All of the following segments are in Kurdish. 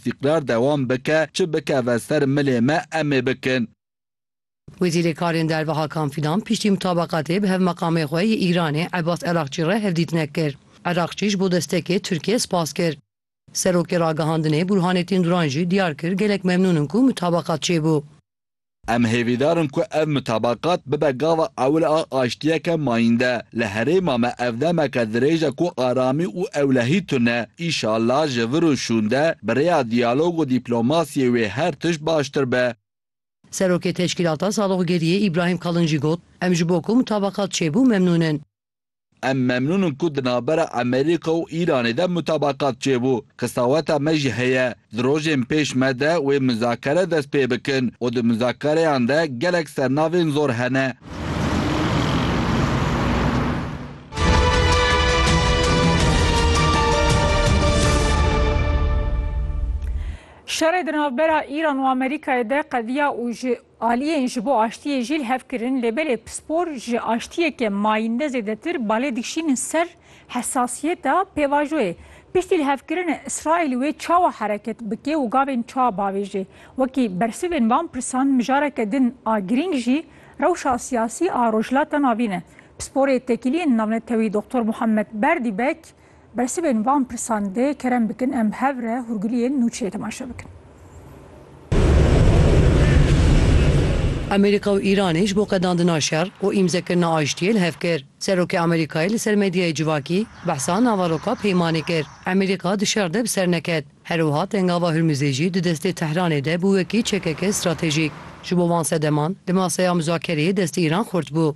Tîkrar dewam bike, çi bikeve ser milê me em ê bikin. Wezîrê Karên Derve Hakan Fîdan piştî mutabaqatê bi hevmeqamê xwe yê Îranê Ebas Erakçî re hevdîtinek kir. Erakçî ji bo destekê Tirkiyê spas kir. Serokê Ragihandinê Burhanetîn Duran jî diyar kir gelek memnûn in ku mutabaqat çêbû. Em hêvîdar in ku ev mutabakat bibe gava ewil a aştiyeke mayînde. Li herêma me ev demeke dirêj e ku aramî û ewlehî tune. Îşallah ji vir û şûnde bi rêya diyalog û dîplomasiyê wê her tişt baştir be. Serokê Teşkîlata Saloqgeriyê Îbrahîm Kalin jî got, Em ji bo ku mutabakat çêbû memnûn in. Em memnûn in ku di navbera Amerîka û Îranê de mutabakat çêbû. Qisaweta me jî heye di rojên pêş me de wê muzakere dest pê bikin û di muzakereyan de gelek sernavên zor hene. Şerê di navbera Îran û Amerîkayê de qediya û ji Aliyên ji bo aştiyê jî li hev kirin lê belê pispor ji aştiyeke mayînde zêdetir balê dikişînin ser hesasiyeta pêvajoyê. Piştî li hev kirinê Îsraîl wê çawa hereket bike û gavên çawa bavêjê. Wekî bersivên van pirsan mijareke din a girîng jî rewşa siyasî a Rojhilata Navîn e. Pisporê Tekîliyên Navnetewî Doktor Muhammed Berdî Bek, Bersivên van pirsan dê kerem bikin em hev re hûrgiliyên nûçeyê temaşe bikin. Amerîka û Îranê ji bo qedandina şer û îmzekirina aştiyê li hev kir. Serokê Amerîkayê li ser medyayê civakî behsa navaroka peymanê kir. Amerîka di şer de bi ser neket. Her wiha tengava Hurmizê jî di destê Tehranê de bû wekî çekeke stratejîk. Ji bo van sedeman di maseya muzakereyê destê Îran xurt bû.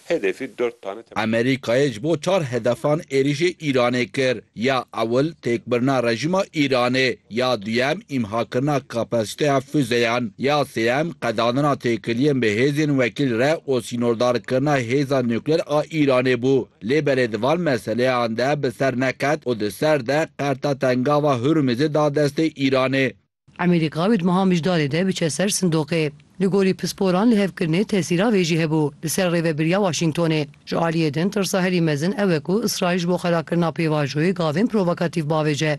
Hedefî dört tane temel. Amerîkayê ji bo çar hedefan êrîşê Îranê kir, ya ewil têkbirina rejîma Îranê, ya duyem îmhakirina kapasîteya fuzeyan, ya sêyem qedandina têkiliyên bi hêzên wekîl re û sînordarkirina hêza nukleer a Îranê bû. Lê belê di van meseleyan de bi ser neket û di ser de qerta tengava Hurmizê da destê Îranê. Amerîka bi di meha mijdarê de biçe ser sindoqê. Li gorî pisporan lihevkirinê tesîra vê jî hebû li ser rêvebiriya Washingtonê. Ji aliyê din tirsa herî mezin ew e ku Îsraîl ji bo xerakirina pêvajoyê gavên provokatîf bavêje.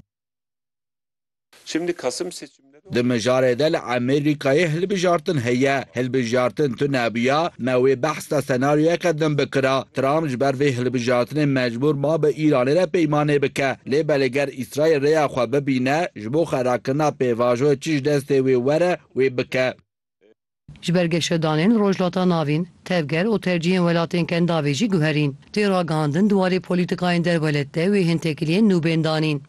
Di mijarê de li Amerîkayê hilbijartin heye. Hilbijartin tu nebiya me wê behs de senaryoyeke din bikira. Trump ji ber vê hilbijartinê mecbûr ma bi Îranê re peymanê bike. Lê belê ger Îsraîl rêya xwe bibîne, ji bo xerakirina pêvajoyê çi ji destê wê were, wê bike. Ji ber geşedanên Rojhilata Navîn, tevger û tercîhên welatên Kendavê jî guherîn. Tê ragihandin di warê polîtîkayên derwelet de wê hin tekiliyên nû bên danîn.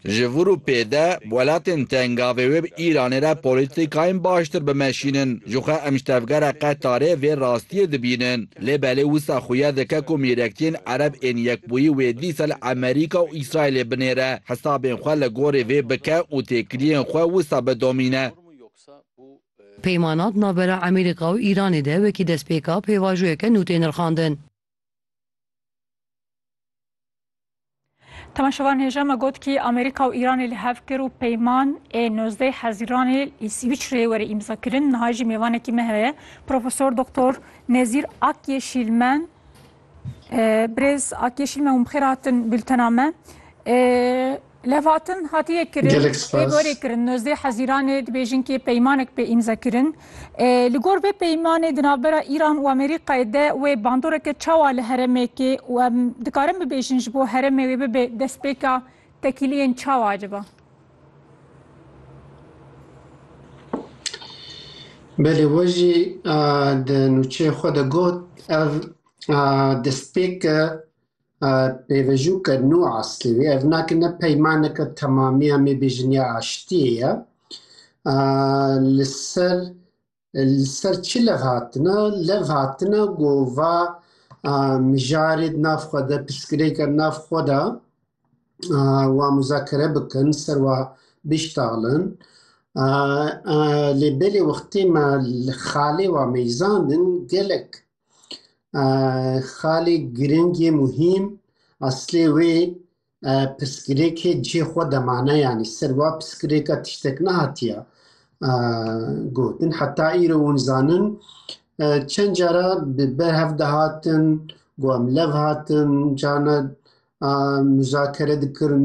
Ji vir û pê de welatên Tengavê wê bi Îranê re polîtîkayên baştir bimeşînin. Jixwe em ji tevgera Qetarê vê rastiyê dibînin. Lê belê wisa xuya dike ku mîrektiyên Ereb ên Yekbûyî wê dîsa li Emerîka û Îsraîlê binêre, hesabên xwe li gorî vê bike û têkiliyên xwe wisa bidomîne. Peymana di navbera Emerîka û Îranê de wekî destpêka pêvajoyeke nû tê nirxandin. Temeşevan hêja me got kî Amerîka û Îranê li hev kir û peyman ê nozdeh hezîranê lê Swîçreyê were îmza kirin. Niha jî mêvanekî me heye Profesor Doktor Nezîr Akyeşîlmen. Birêz Akyeşîlmen hûn bixêr hatin bültena me. Levhatin hatiye kirin, pê gorê kirin. Nozdeh hezîranê dibêjin kê peymanek pê îmza kirin. Li gor vê peymanê di navbera Îran û Amerîkayê de wê bandoreke çawa li heremekê û em dikarin bibêjin ji bo heremê wê bibe destpêka tekîliyên çawa acaba? Belê we jî di nûçeyê xwe de got ev destpêk e Pêvejûke nû aslê wî ev nake ne peymaneke temamiya mê bêjin ya aştiyê ye. Li ser li ser çi lev hatine? Lev hatine ku va mijarê di nav xwe de pirsgirêke di nav xwe de wa muzakere bikin ser wa biştaxlin. Lê belê wextê me li xalê wa meyzan in gelek Xalê girîng ê muhîm eslê wê pirsgirêkê cihê xwe de mane yanî ser wa pirsgirêka tiştek nehatiye gotin. Heta îro hûn dizanin çend cara bi berhev dihatin got em lev hatin carna muzakere dikirin.